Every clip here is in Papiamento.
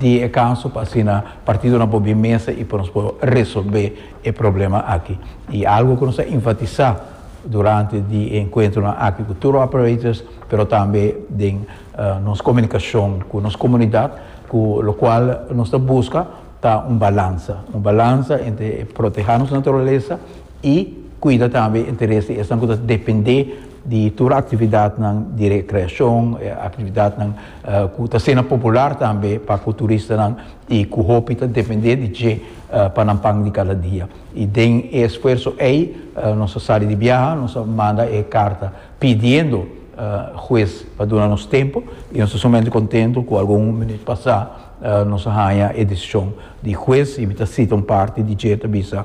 Di e caso pa asina partidonan por bin mesa y pa nos por resolbe e problema aki. Y algo cu nos a enfatisa durante di e encuentronan aki cu tour operators pero tambe den nos comunicacion cu nos comunidad cu locual nos ta busca ta un balansa, un balansa entre proteha nos naturalesa, i kuida tambe interes di esnan ku ta dependé di tur aktividatnan di rekreashon, aktividatnan ku ta asina popular tambe pa ku turistanan i ku hopi ta dependé di dje pa nan pan di kada dia. I den e esfuerso ei nos a sali di biaha, nos a manda e karta pidiendo hues pa duna nos tempu i nos ta sumamente kontentu ku algun minut pasá nos a haña e desishon di hues i mi ta sita un parti di dje ta bisa,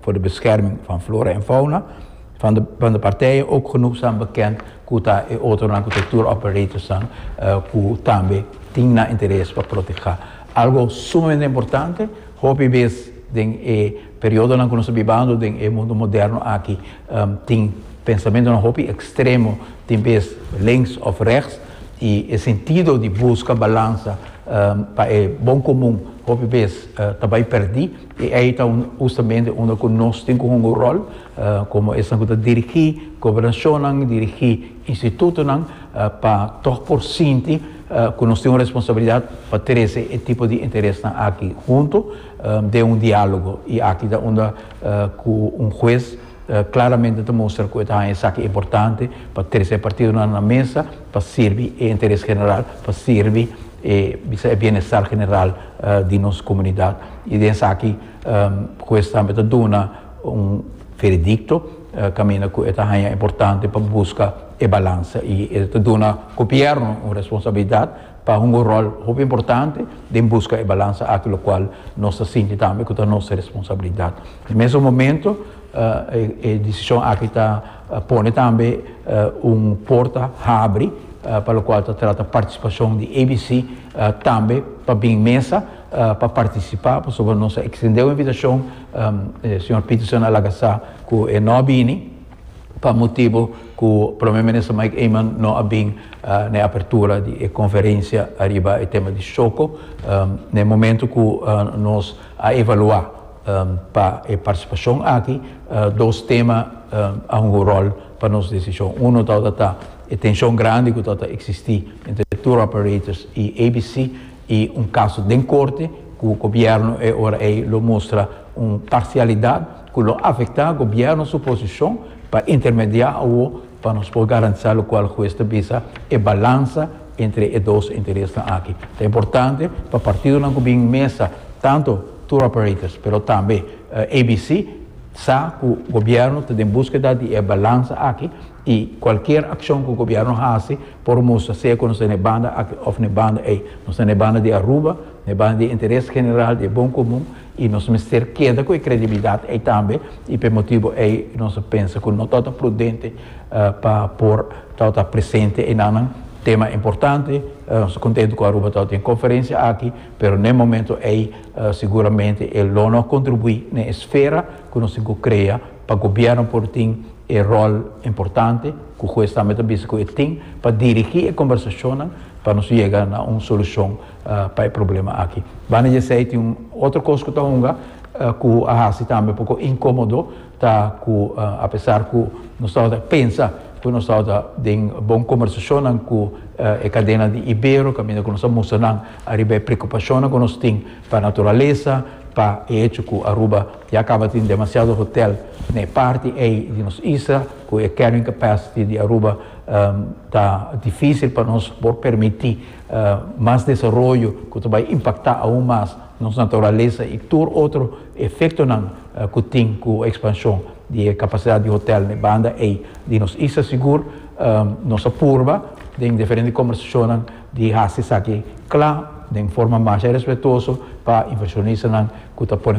Voor de bescherming van flora en fauna van de partijen ook genoeg staan bekend cu ta e otronan cu ta tour operators nan cu tambe tin nan interes pa proteha. Algo sumamente importante, hopi bez den e periodonan cu nos ta bibando den e mundo moderno aki tin pensamentonan hopi extremo, tin bez links of rechts y e sentido di busca balansa pa e bon comun hopi bez ta bay perdi. E ei ta hustamente unda ku nos tin ku hunga un ròl komo esnan ku ta dirigí gobernashonnan, dirigí institutonan pa tòg por sinti ku nos tin un responsabilidat pa trese e tipo di interesnan aki huntu den un diálogo. I aki ta unda ku un hues klaramente ta mustra ku e ta haña esaki importante pa trese e partidonan na mesa pa sirbi e interes general, pa sirbi. E bisa e bienestar general di nos comunidad y den esaki Huez tambe ta duna un veredicto caminda cu e ta haya importante pa busca e balansa y e ta duna gobierno un responsabilidad pa hunga un rol hopi importante den busca e balansa aki locual nos ta sinti tambe cu ta nos responsabilidad. Na mesun momento. E decision aki ta pone tambe un porta habri pa locual ta trata participacion di ABC tambe pa bin mesa pa participa pasobra nos a extende un invitacion señor Peterson a laga sa cu e no a bini pa motibo cu Prome Minister Mike Eman no a bin na e apertura di e conferencia ariba e tema di Shoco na e momento cu nos A evaluá pa e partisipashon aki dos tema a hunga un ròl pa nos desishon. Uno tabata ta e tenshon grandi ku tabata eksistí entre tour operators i ABC i un kaso den korte ku gobièrnu e ora ei lo mustra un parsialidat ku lo afektá gobièrnu su posishon pa intermediá awor Pa nos por garantisá lokual hues ta bisa e balansa entre e dos interesnan aki, ta importante pa partidonan ku bin mesa, tantu tour operators pero tambe ABC, sa ku gobièrnu ta den búskeda di e balansa aki i kualkier akshon ku gobièrnu hasi por mustra sea ku nos ta na e banda aki òf na e banda ei, nos ta na e banda di Aruba, na e banda di e interes general, di e bon komun I nos mester keda ku e kredibilidat ei tambe, i p'e motibu ei nos a pensa ku no tabata prudente pa por tabata presente ei nannan. Tema importante, nos ta kontentu ku Aruba tabata den e konferensia aki, pero n'e momentu ei seguramente e lo no a kontribuí na e sfera ku nos tin ku krea pa gobièrnu por tin e ròl importante ku Hues tambe ta bisa ku e tin pa dirigí e kombersashonnan pa nos yega na un solushon pa e problema aki. Banda di esei tin un otro kos ku ta hunga ku a hasi tambe poko inkomodo, ta ku apesar ku nos tabata pensa ku nos tabata den bon kombersashonnan ku e kadena di Ibero kaminda ku nos a mustra nan ariba e preokupashonnan ku nos tin pa naturalesa, pa e hecho ku Aruba ya kaba tin demasiado hotèl na e parti ei di nos isla, ku e carrying capacity di Aruba ta difísil pa nos por permití. mas desaroyo ku ta bai impaktá aun mas nos naturalesa i tur otro efektonan ku tin ku ekspanshon di e kapasidat di hotèl na e banda ei di nos isla. Sigur nos a purba den diferente kombersashonnan di hasi esaki kla den forma masha respetuoso pa invershonistanan ku ta pone.